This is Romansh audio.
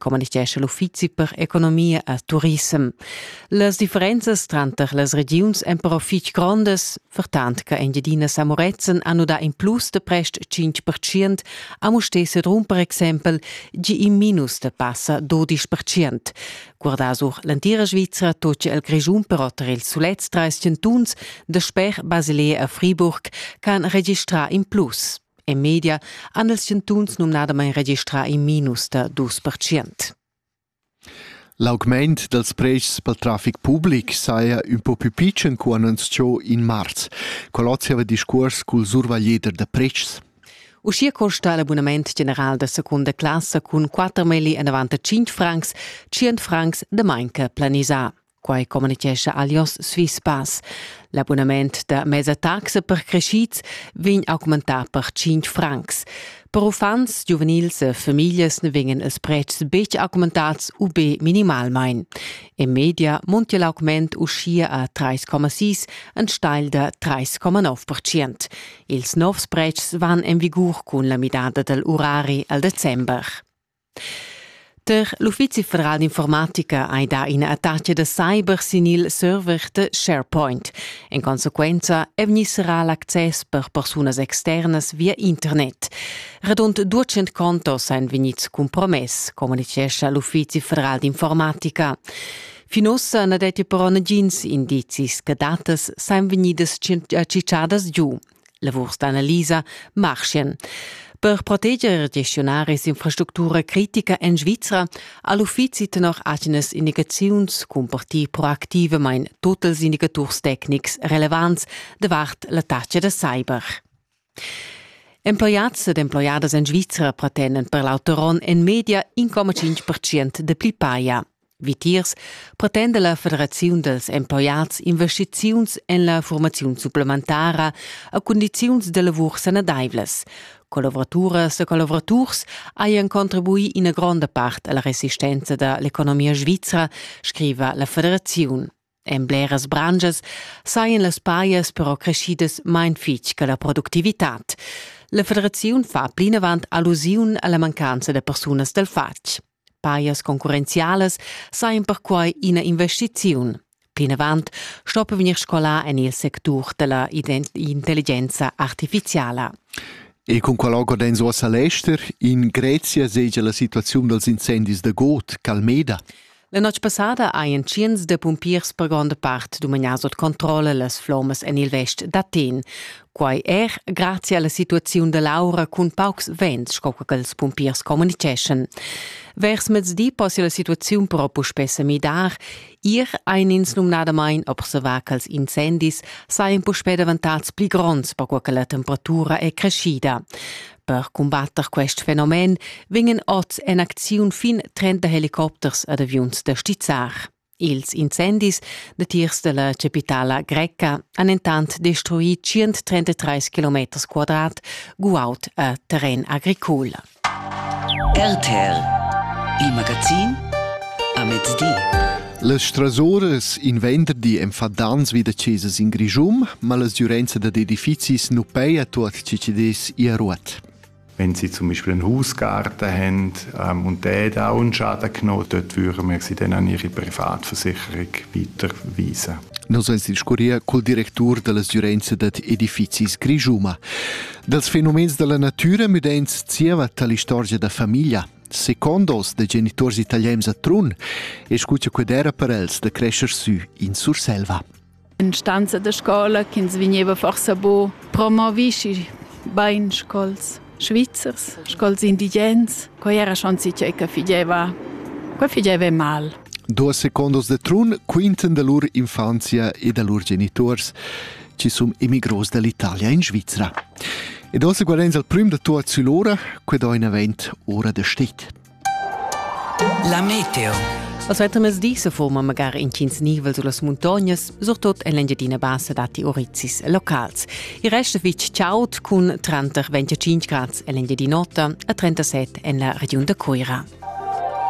communitgescha l'uffizi per economia e turissem. Las differenzas tranter las regiuns èn però fitg grondas, fertant che Engiadina Samoretzen ha nudà in plus de prest 5% a Mustè Sedrun per exempel, gi in minus de passa 12%. Guardà sur l'entira Svizzera tot il Grischun però tar ils sulets 30 tuns de sper Basilea a Friburg ch'han registrà in plus. En media han els chantuns numnadamain registrà in minus da dus percent. L'augment dals pretschs pel trafic public saja ün po pü pitschen cu annunzchò in marz. Qual ozziava discuors cul survaglieder da pretschs? Uschia costa l'abunament general da secunda classa cun 4 meili enavant a 5 francs, 100 francs da manca planisà. Quai communitgescha Alios Swiss Pass. L'abunament da mesa taxa per creschids vegn augmentà per 5 francs. Per uffants, giuvenils e famiglias ne vegnan ils pretschs betg augmentats u be minimalmain. In media muntia l'augment uschia a 3,6 enstagl da 3,9 Ils novs pretschs van en vigur cun la midada dal urari al december. Der l'uffizi federal d'informatica hai dà ina attacca da cyber sin il server da SharePoint. En consequenza è vegnì serrà l'access per persunas externas via internet. Radund 200 contos èn vegnids compromess, communitgescha l'uffizi federal d'informatica. Fin ussa na detti però nagins indizis che datas sajan vegnidas ciciadas giu. Lavurs d'analisa marschien. Per proteger gestiunaris infrastructura critica en Svizra ha l'uffizi tenor agenas indicaziuns cumpartì proactivamain tut ils indicaturs tecnics relevants davart la taxa da cyber. Emploiads ed emploiadas en Svizra pretenden per l'auter onn en media 1,5% de pli paia. Vitiers pretenda la Federaziun dals empojats investiziuns en la formaziun supplementara a cundiziuns da lavur sanadaivlas. Collavuraturas e collavuraturs hajan contribuì ina gronda part alla resistenza da l'economia svizra, scriva la federaziun. En bleras branschas sajan las pajas però creschidas main fitg che la productivitad. La federaziun fa plinavant allusiun a la mancanza da persunas dal fatg. Pajas concurrenzialas sajan perquai ina investiziun. Plinavant stoppa vegnir scolà en il sectur della intelligenza artificiala. E con qual organi uossa l'ester in Grezia segia la situaziun dals incendis da Got, Calmeda? La notg passada hajan tschients da pumpiers per gronda part dumagnà sut controlla las flommas en il vest d'Athen. Quai er grazia alla situaziun da l'aura cun paucs vents, sco che ils pumpiers communiceschan. Vers mezdi possia la situaziun però puspè sa midar. Ir ein ins numnadamain observar ch'ils incendis sajan puspè davantads pli gronds perquai che la temperatura è creschida. Per cumbatter quest fenomen vegnan oz en acziun fin 30 helicopters ad aviuns da stizzar. Ils incendis datiers della capitala greca han entant destruì 133 km quadrat guaud a terren agricol. RTL, il magazin a mezdi. Las strasuras in venderdi enfadans vi da chesas in Grischun, ma la sgiurenza dad edifizis nu peia tuot chi chi dess ir a ruot. Wenn sie zum Beispiel einen Hausgarten haben ähm, und der da auch einen Schaden genommen, dort würden wir sie dann an ihre Privatversicherung weiterweisen. Nos ans discurria cul directur dalla sgiurenza dad edifizis Grijuma. Dals fenomens dalla natüra müdens zieva tali istorgia da famiglia. Second onns da geniturs italians a Trun e scu cha qued era per els da crescer sü in Surselva. In stanza da scola ch'ins vegneva forsa bo promovischi bain scols svizzers, scols indigens, quai era schon che che figeva, quai figeva mal. Duas secondos de Trun quinten da lur infanzia e da lur geniturs ci sun immigros dall'Italia in Svizra. Ed ossa guardains al prüm da tuot sül'ora, que do in avent ora da stet. La meteo. Als mezzdi se forma magari intgins nivel sulas muntognas, surtot en l'Engiadina Bassa datti orizis locals. Il resto fitg chaud cun tranter 25 grads en l'Engiadin'Ota e 37 en la regiun da Coira.